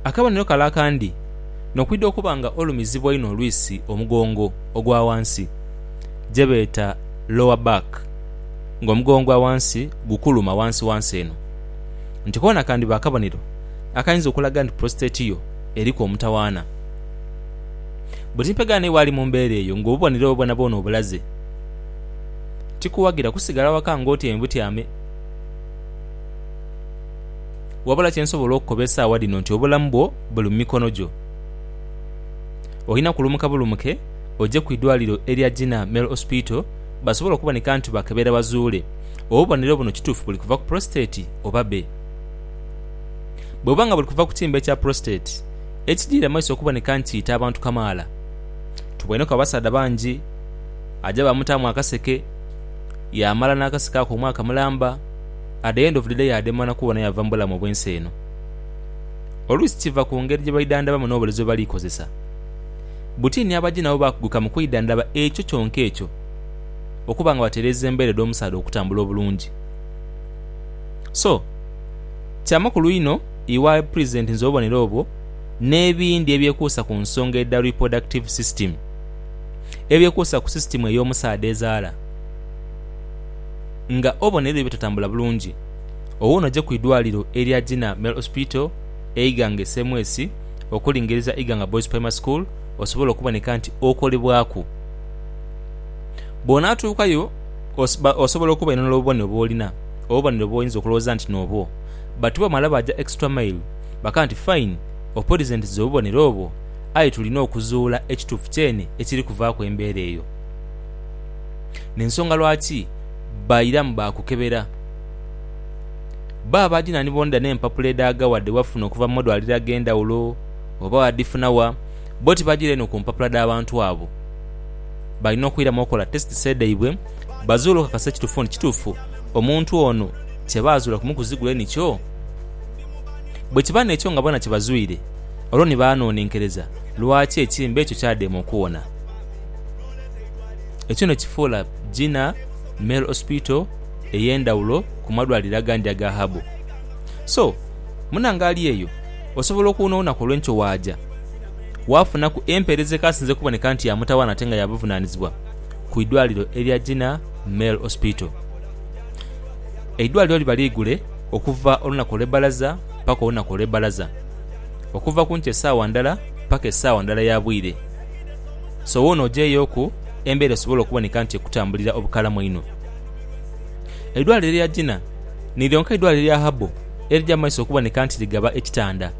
Akabonero kale akandi n'okwidha okuba nga olumizibwa einho olwisi omugongo ogwa ghansi, gye beeta lower back, ng'omugongo ogwa ghansi gukuluma ghansighansi eno. Nti koona kandiba akabonero akayinza okulaga nti prostate yo eriku omutawaana. Bwe timpegha naiwe ali mu mbeera eyo ng'obubonero obwo bwonabwona obulaze, tikuwagira kusigala waka ng'otyaime butyame. Wabula kye nsobola okukoba esaawa dhino nti obulamu bwo buli mu mikono gyo. Olina kulumuka bulumuke oje ku idwaliro erya Jinnah Male Hospital basobole okuboneka nti bakebera bazuule obubonero buno kituufu buli kuva ku prostate oba be. Bwebuba nga buli kuva ku kimbe kya prostate, ekidhirira mu maiso okuboneka nti kiita abantu kamaala. Tuboineku abasaadha bangi aja bamutaamu akaseke, yaamala n'akaseke ako omwaka mulamba. at the end of the day adema na kubona yava mu bulamu obw'ensi eno. Oluusi kiva ku ngeri gye baidhandhabamu n'obulezo bwe bali kozesa. Buti ni abaji nabo baakuguka mu kwidhandhaba ekyo kyonka ekyo okuba nga batereeza embeera edh'omusaadha okutambula obulungi. So, kya makulu inho iwe Pulezidenti nze obubonero obwo n'ebindi ebyekuusa ku nsonga edha reproductive system, ebyekuusa ku sisitimu ey'omusaadha ezaala, nga obona ebyo bitatambula bulungi owo noja kwidwaliro erya Gina Male Hospital e Iganga e Semwesi okulingiriza Iganga Boys Primary School osobole okuboneka nti okolebwaku. Bwonatuukayo osobola okubainonera obubonero bwolina, obubonero bwoyinza okulowooza nti nobwo but bamala baja extra mile bakaba nti fine opurizentiza obubonero obwo aye tulina okuzuula ekituufu kyene ekiri kuvaaku embeera eyo. n'ensonga lwaki bairamu baakukebera. Bbo abaja na ni bonda n'empapula edhaghawa dhe bafuna okuva mu madwaliro ag'endhawulo oba baadhifuna wa, bbo tibajiira inho ku mpapula dh'abantu abo. Balina okwiramu okukola tesiti se dhaibwe bazuule okukakasa ekitufu nti kitufu omuntu ono kye baazuula kumukuzigule nikyo? Bwe kiba n'ekyo nga bona kibazwire, olwo ni baanonenkereza lwaki ekimbe ekyo kyadema okuwona. Ekyo nno kifuula Jinnah Male Hospital ey'endhawulo ku madwaliro agandi aga Habo. So, munange ali eyo osobola okuwunaawuna ku olw'enkyo waaja waafunaku empeereza ekaasinze okuboneka nti ya mutawaana ate nga ya buvunaanizibwa ku idwaliro erya Jinnah Male Hospital. Eidwaliro liba liigule okuva olunaku olw'ebbalaza paka olunaku olw'ebbalaza, okuva ku nkyo esaawa ndala paka esaawa ndala ya bwire. So woona ogyeyooku embeera esobole okuboneka nti ekutambulira obukalamu einho. Eidwaliro erya Jinnah ni lyonka eidwaliro erya Habo erija mu maiso okuboneka nti ligaba ekitanda.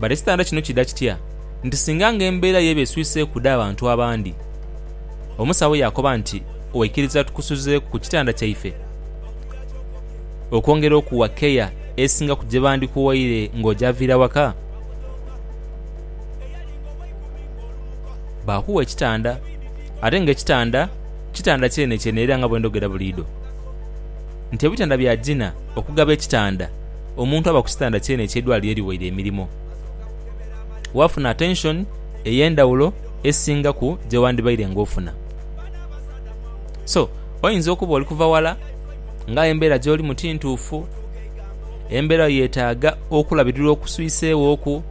But ekitanda kino kidha kitya nti singa nga embeera y'eba eswiseeku dha bantu abandi? Omusawo yaakoba nti, Waikiriza tukusuzeeku ku kitanda kyaife okwongera okuwa keya esinga ku gye bandikuwaire ng'ogyaviira waka? Baakugha ekitanda, ate nga ekitanda, kitanda kyenekyene era nga bwe ndhogera buliidho nti ebitanda bya Gina okugaba ekitanda omuntu aba ku kitanda kyeneekyo eidwaliro ye liwaire emirimo. Waafuna atenshoni ey'endhaghulo esingaku gye wandhibaire ng'ofuna. So, oyinza okuba oli kuva ghala nga aye embeera gy'olimu ti ntuufu, embeera yo yeetaaga okulabirirwa okuswiseeghoku.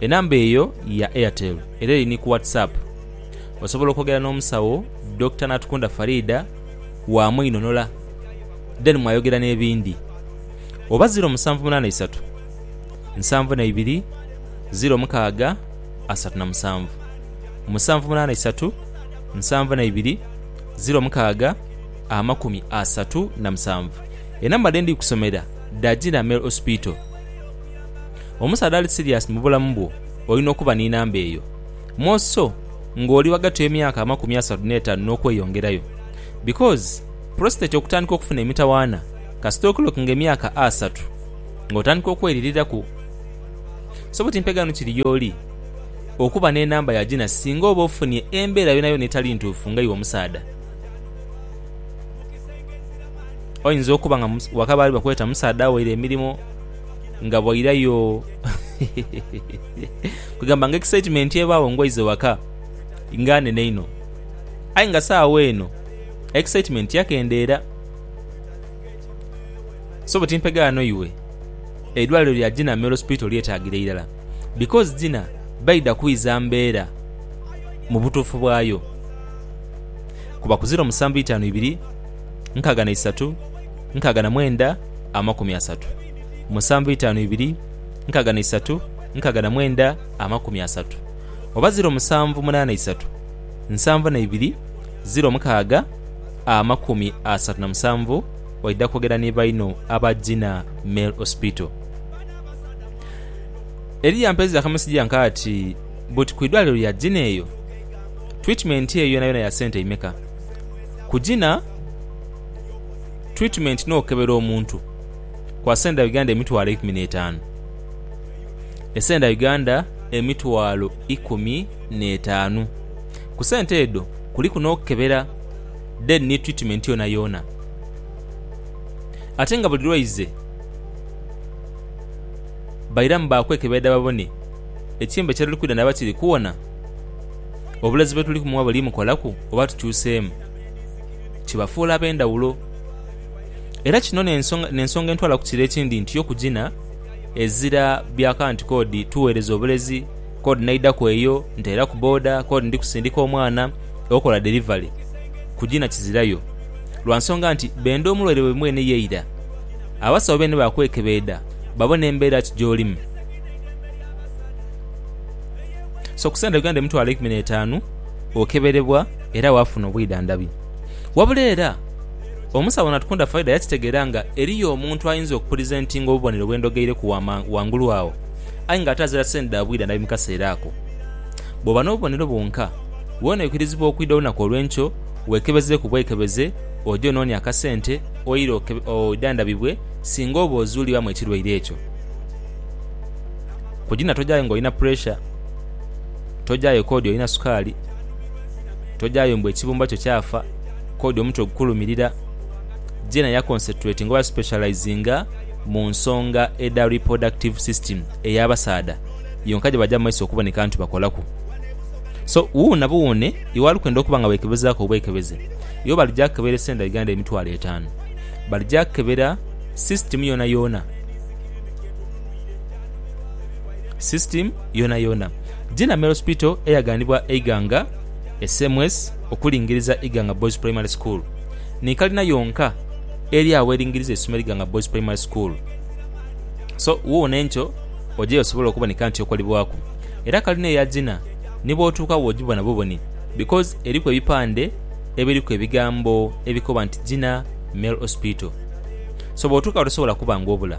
Enamba eyo ya Airtel era eri ni ku WhatsApp. Osobola okwogera n'omusawo Dokita Natukunda Faridah wa Mwinhonola then mwayogera n'ebindi. Oba ziro musanvu munaana isatu, nsanvu na ibiri, ziro mukaaga asatu na musanvu. Musanvu munaana isatu, nsanvu na ibiri, ziro mukaaga amakumi asatu na musanvu. Enamba dhe ndi kusomera dha Gina Male Hospital. Omusaadha ali siriasi mu bulamu bwo olina okuba ni namba eyo. More so nga oli ghagati w'emyaka amakumi asatu n'etaanu n'okweyongerayo. Because prostate okutandika okufuna emitawaana kasita okilockinga emyaka asatu ng'otandika okweririraku. So buti mpeganu kiri y'oli okuba n'enamba ya gina singa oba ofunye embeera yonayona etali ntuufu nga iwe omusaadha. Oyinza okuba nga waka baali bakweta musaadha awaire emirimo. nga bwairayo kwegamba nga excitement ebagho nga oize ghaka nga nhenhe inho aye nga sawa eno excitement yakendhera so bwe timpegha ghano iwe eidwaliro lya Gina male hospital lyetagira irala bcoz Gina baidha kwiza mbera mu butufu bwayo kuba ku ziro musanvu itanu ibiri nkaga na isatu nkaga na mwenda amakumi asatu musanvu itaanu ibiri nkaga na isatu nkaga na mwenda amakumi asatu oba ziro musanvu munana isatu nsanvu na ibiri ziro mukaaga amakumi asatu na musanvu oida kwogera ni baino aba Gina Male Hospital. Eri yampeeza akameseji yanka ati buti ku idwaliro lya Gina eyo twitmenti eyo yonayona ya sente imeka? Ku Gina Twitimeenti n'okebera omuntu kwa senda Uganda emitwalo eikumi n'etaanu. Esenda Uganda emitwalo ikumi n'etaanu. Ku sente edho kuliku n'okebera then ni twitimeenti yoonayoona. Ate nga buli lwaize bairamu baakwekeberera babone ekiyembe kyeruli kwidha naba kiri kuwona, obulezi bwetuli kumuwa buli mukolaku oba tukyuseemu. kibafuula ab'endhawulo. Era kino n'ensonga entwala ku kiro ekindi nti yo kugina ezira bya kanti k'odi tugheereza obulezi, k'odi naidhaku eyo nteeraku boda, k'odi ndi kusindika omwana okola delivery, kugina kizirayo. Lwa nsonga nti benda omulwaire waibwe mwene ye ira. Abasawo beene baakwekebeedha babone embeera ki gy'olimu. So ku sente Uganda emitwalo eikumi n'etaanu. okeberebwa era waafuna obwidhandhabi. Wabula era, omusawo Natukunda Faridah yakitegeera nga eriyo omuntu ayinza okukuliza entingo obubonero bwe ndhogeireku ghangulu agho aye ng'ate azira sente dha bwidhandhabi mu kaseera ako. Bw'oba n'obubonero bwonka, weene oikirizibwa okwidha olunaku olw'enkyo weekebezeeku bwekebeze oje onoone akasente oire oidhandhabibwe singa oba ozuulibwamu ekirwaire ekyo. Kugina tojayo ng'olina puresha. Tojayo k'odi olina sukaali, tojayo mbu ekibumba kyo kyafa, k'odi omutwe ogukulumirira. Jenna yakonsetuletinga oba yasipeshalayizinga mu nsonga edha ripurodakitivu sisitimu ey'abasaadha yonka gye baja mu maiso okuboneka nti bakolaku. So, wuuno na buwuune iwaali kwenda okuba nga weekebezaaku obwekebeze, iwe balija kukebera esente dha Uganda emitwalo etaanu. Balija kukebera sisitimu yoonayoona. system yonayona. Jinamel Hospital eyaghanibwa Eiganga SMS okulingiriza Iganga Boys Primary School ni kalina yonka eri agho eringiriza eisomero Iganga Boys Primary School. So woona enkyo ojeyo osobole okuboneka nti okolebwaku. Era kalina eya Gina ni bwotuuka wojibona buboni because eriku ebipande ebiriku ebigambo ebikoba nti Gina Mel Hospital. So bwotuuka gho tosobola kuba nga obula.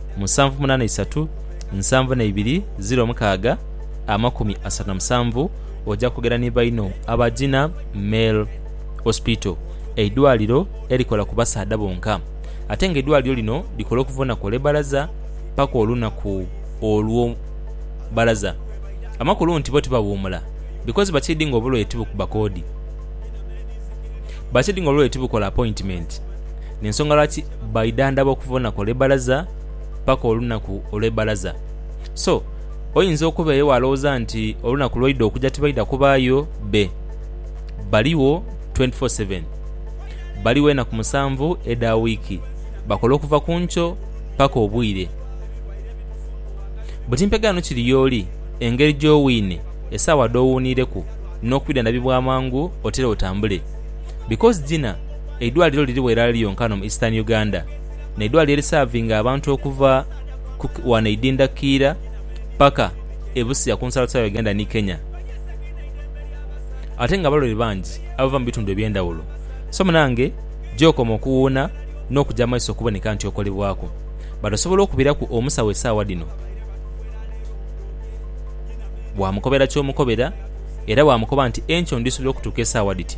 musanvu munaana isatu nsanvu na ibiri ziro mukaaga amakumi asatu na musanvu oja kwogera ni baino aba Gina Male Hospital, eidwaliro erikola ku basaadha bonka ate nga eidwaliro lino likola okuva olunaku olwe balaza paka olunaku olwo balaza. Amakulu nti bo tibawuumula because bakiidi nga obulwaire tibukuba koodi, bakiidi nga obulwaire tibukola appointment. n'ensonga lwaki baidhandhaba okuva olunaku olw'ebbalaza paka olunaku olw'ebbalaza. So, oinza okubaeyo walowoza nti olunaku lwaidha okuja tibaidha kubaayo be. Baligho twenty four seven. Baligho enaku musanvu edha wiiki. Bakola okuva ku nkyo paka obwire. Buti mpegaano kiri y'oli, engeri gy'owiine, esaawa dh'owuuniireku, n'okwidhandhabibwa amangu otere otambule. Because Gina. eidwaliro lirigho irala lyonka ghano mu Eastern Uganda n'eidwaliro erisavinga abantu okuva ghano eidinda Kiira paka e Busia ku nsalosalo ya Uganda ni Kenya ate nga abalwaire bangi abava mu bitundu eby'endhaghulo. So munange gy'okoma okuwuuna n'okuja amaiso okuboneka nti okolebwaku but osobola okubiraku omusawo esaawa dhino bwamukobera ky'omukobera era bwamukoba nti enkya ondhi subira okutuuka esaawa dhiti.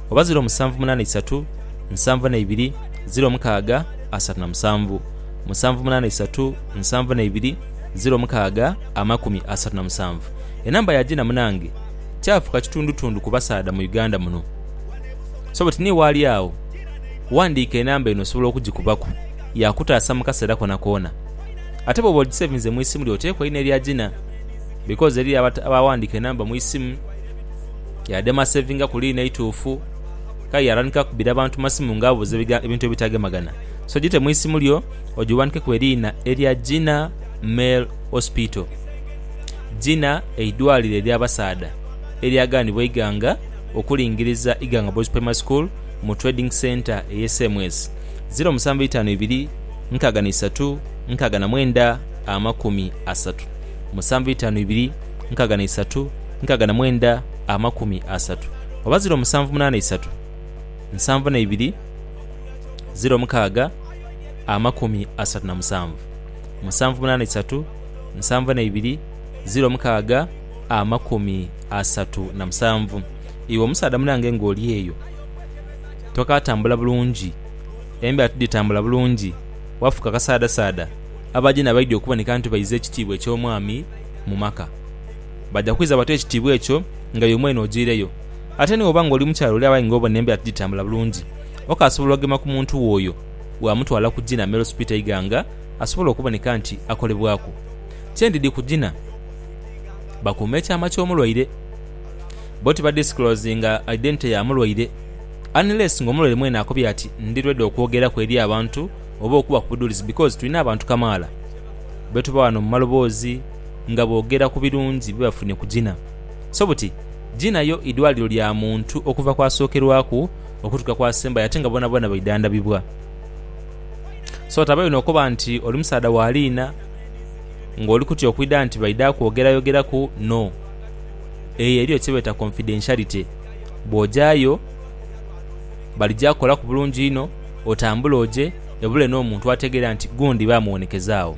oba ziro musanvu munaana isatu nsanvu na ibiri ziro mukaaga asatu na musanvu musanvu munaana isatu nsanvu na ibiri ziro mukaaga amakumi asatu na musanvu enamba ya Gina munange kyafuka kitundutundu ku basaadha mu Uganda muno so but ni waali agho wandiika enamba eno osobola okugikubaku yakutaasa mu kaseera konakoona ate bwoba ogisevinze mu isimu lyo oteekwa einha erya Gina because eriyo abawandiika enamba mu isimu Yaadema sevinga ku liina eituufu. Kale yaatandika kubira bantu masimu nga abuuza ebintu ebitagemagana. So gite mu isimu lyo ogiwandikeku eriina erya Gina Male Hospital, Gina eidwaliro ery'abasaadha eryaganibwa eighanga okulingiriza Iganga Boys Primary School mu Trading Centre eye Semwezi ziro musanvu eitaanu ibiri nkaaga na isatu nkaaga na mwenda amakumi asatu musanvu eitaanu ibiri nkaaga na isatu nkaaga na mwenda amakumi asatu oba ziro musanvu munaana isatu nsanvu na ibiri ziro mukaaga amakumi asatu na musanvu musanvu munaana isatu nsanvu na ibiri ziro mukaaga amakumi asatu na musanvu Iwe omusaadha munange ng'oli eyo tokaatambula bulungi, embeera tidhitambula bulungi, wafuuka kasaadasaada, abaja n'abaidha okuboneka nti baiza ekitiibwa eky'omwami mu maka. baja kwidha batoe ekitiibwa ekyo nga iwe mwene ojiireyo. Ate ni bw'oba ng'oli mukyala oli abayi ng'obona embeera tigitambula bulungi, okaasobola okugema ku muntu wo oyo bw'amutwala ku Gina Male Hospital Iganga asobole okuboneka nti akolebwaku kyendidi ku Gina bakuume ekyama ky'omulwaire. Bo tibadisclosinga identity ya mulwaire unless ng'omulwaire mwene akobye ati ndi ready okwogeraku eri abantu oba okubaku buduulizi because tulina abantu kamaala be tuba ghano mu maloboozi, nga boogera ku birungi bye bafunye ku Gina. So buti, Gina yo idwaliro lya muntu okuva ku asookerwaku okutuuka ku asembayo ate nga boonaboona baidhandhabibwa. So tabayo n'okoba nti oli musaadha wa liina ng'oli kutya okwidha nti baidha kwogerayogeraku. No. Eyo eriyo kye beeta confidentiality. Bw'ojayo, balija kukolaku bulungi inho, otambule oje, ebule n'omuntu ategeera nti gundi baamuwonekezaagho.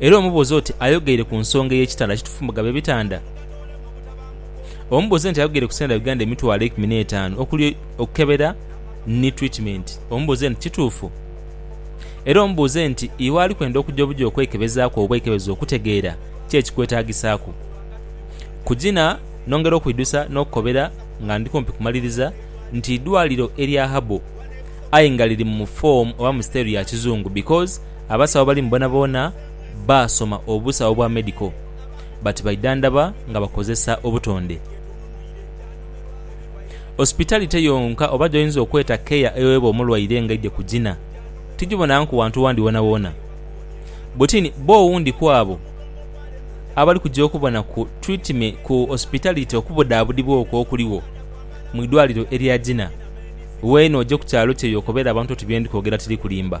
era omubuuza oti, Ayogeire ku nsonga ey'ekitanda ki tufumba gaba ebitanda? Omubuuze nti, Ayogeire ku sente dha Uganda emitwalo eikumi n'etaanu okuli okukebera ni twitimeenti? Omubuuze nti, Kituufu? Era omubuuze nti, Iwe ali kwenda okuja obuja okwekebezaaku oba okwekebeza okutegeera ki ekikwetaagisaaku? Kugina nongera okwidhusa n'okukobera nga ndi kumpi kumaliriza nti idwaliro erya Habo aye nga liri mu foomu oba mu sitayiro ya kizungu because Abasawo abali mu boonaboona baasoma obusawo bwa medical but baidhandhaba nga bakozesa obutonde. Hospitality yonka oba gy'oyinza okweta care ewebwa omulwaire nga aidhye ku gina, tigibonanku wantu wandi wonawona. Butin bo owundi ku abo abali kugya okubona ku treatme ku hospitality okubudhaabudhibwa okwo okuligho mu idwaliro erya gina. Weene ogye ku kyalo kye y'okobere abantu oti bye ndi kwogera tiri kulimba.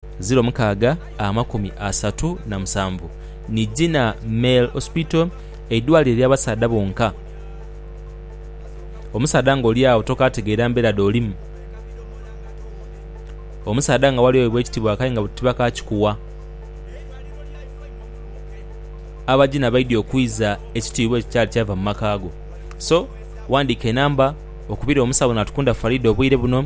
ziro mukaaga amakumi asatu na musanvu ni Jina Male Hospital eidwaliro ely'abasaadha bonka. Omusaadha nga oli agho tokaategeera mbeera dh'olimu. Omusaadha nga wali oweebwa ekitiibwa kaai nga tibakaakikuwa. Abagina baidhie okwiza ekitiibwa ekyo kyali kyava mu maka go. So, ghandiika enamba okubire omusawo Natukunda Faridah obwire buno.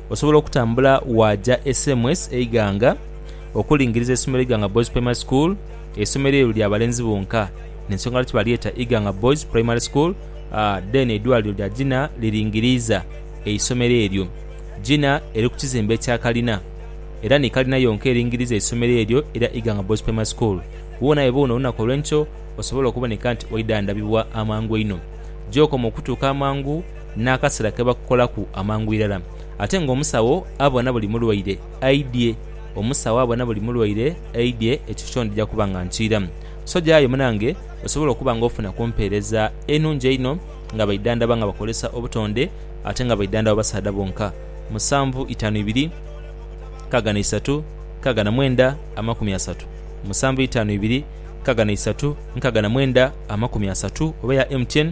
Osobola okutambula waaja e Semwes e Iganga okulingiriza eisomero Iganga Boys Primary School. Eisomero eryo lya balenzi bonka n'ensonga lwaki balyeta Iganga Boys Primary School. Then eidwaliro lya Gina liringiriiza eisomero eryo. Gina eri ku kizimbe ekya kalina era ni kalina yonka eringiriiza eisomero eryo erya Iganga Boys Primary School. Woona we boona olunaku olw'enkyo osobola okuboneka nti waidhandhabibwa amangu einho. Gy'okoma okutuuka amangu. n'akasera ke bakukolaku amangu irala. Ate ng'omusawo abona buli mulwaire aidhie, omusawo abona buli mulwaire aidhie, ekifo kyo ndija kuba nga nkiiramu. So gyayo munange osobole okuba nga ofuna ku mpeereza enungi einho nga baidhandaba nga bakozesa obutonde ate nga baidhandaba basaadha bonka. Musanvu itaanu ibiri nkaaga na isatu nkaaga na mwenda amakumi asatu Musanvu itaanu ibiri nkaaga na isatu nkaaga na mwenda amakumi asatu oba eya MTN.